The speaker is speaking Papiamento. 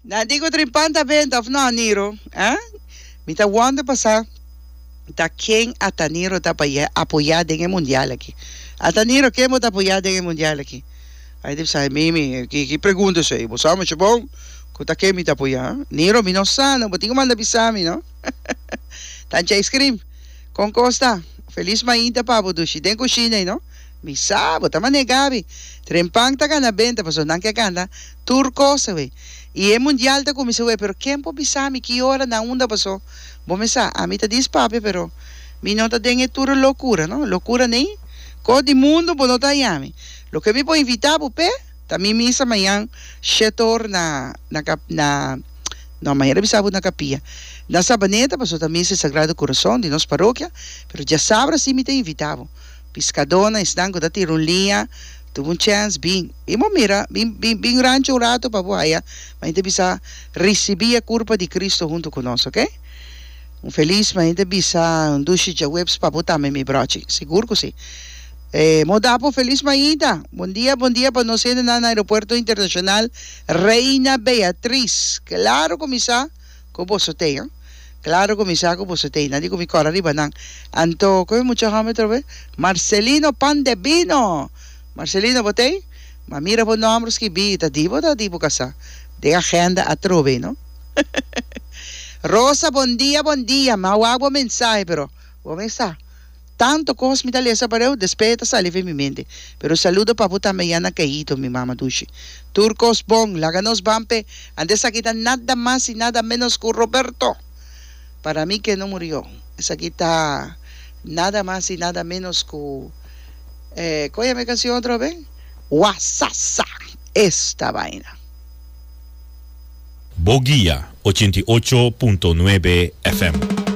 Na di cu Trimpan ta benta of no, Niro? Eh? Mi ta wonder pa sa ta ken ata Niro ta paya apoya den e mundial aki. Ata Niro ken bo ta apoya den e mundial aki? Ay di bisai Mimi, ki ki pregunta esey? Bo sa mucho bon cu ta ken mi ta apoya. Niro, mi no sa no, bo tin cu manda bisa mi no. Tanchi ay scream. Con cos ta? Feliz mainta pa bo dushi den cushina ay no. Mi sa, bo ta manega avi. Tren Pan ta gana benta pasobra nan ke gana tur kos awe. I e Mundial ta kuminsa awe, pero ken por bisa mi ki ora nan unda paso? Bo me sa, ami ta di Spapia pero mi no ta den e tur e lokura, no. Lokura nei? Kos di mundu bo no ta hayami. Loke mi por invita bo p'e ta mi misa mañan shete or na na ka na no, mañan lo bisa bo na kapia na Sabaneta pasobra ta misa e Sagrado Corazon di nos parokia, pero diasabra si mi ta invita bo. Piskadónan, esnan ku ta tira un liña, tup un chèns, bin, bin bo mira, bin, bin, bin ranchu un ratu pa bo haya, ma hende bisa, Risibí e kurpa di Kristu huntu ku nos, oke? Un felis, ma hende bisa, Un dushi djawebs pa bo tambe, mi bròchi. Sigur ku si. E mo dapa un felis mainta, Bondia, bondia pa nos hende nan na Aeropuerto Internashonal Reina Beatriz. Klaru ku mi sa. ku boso tei no klaro ku mi sa ku boso tei nadi ku mi kòrá riba nan anto ku e mucha hòmber atrobe Marcelino pan de bino Marcelino bo tei ma mira bo nòmber skibí ta di bo ta di bo kasá den agenda atrobe no Rosa bondia bondia mi a wak bo mensahe pero bo me sa Tanto cos mi ta lesa pareu despe e ta sali ven mi mente. Pero saludo pa bo tambe Yana Keido mi mama dushi. Tur cos bon, laga nos ban pe ante esaki ta nada mas y nada menos cu Roberto. Para mi que no murio esaki ta nada mas y nada menos cu eh con yama e cancion otro be? Wasasa! Esta vaina. Bo guia ochenta i ocho punto nuebe FM.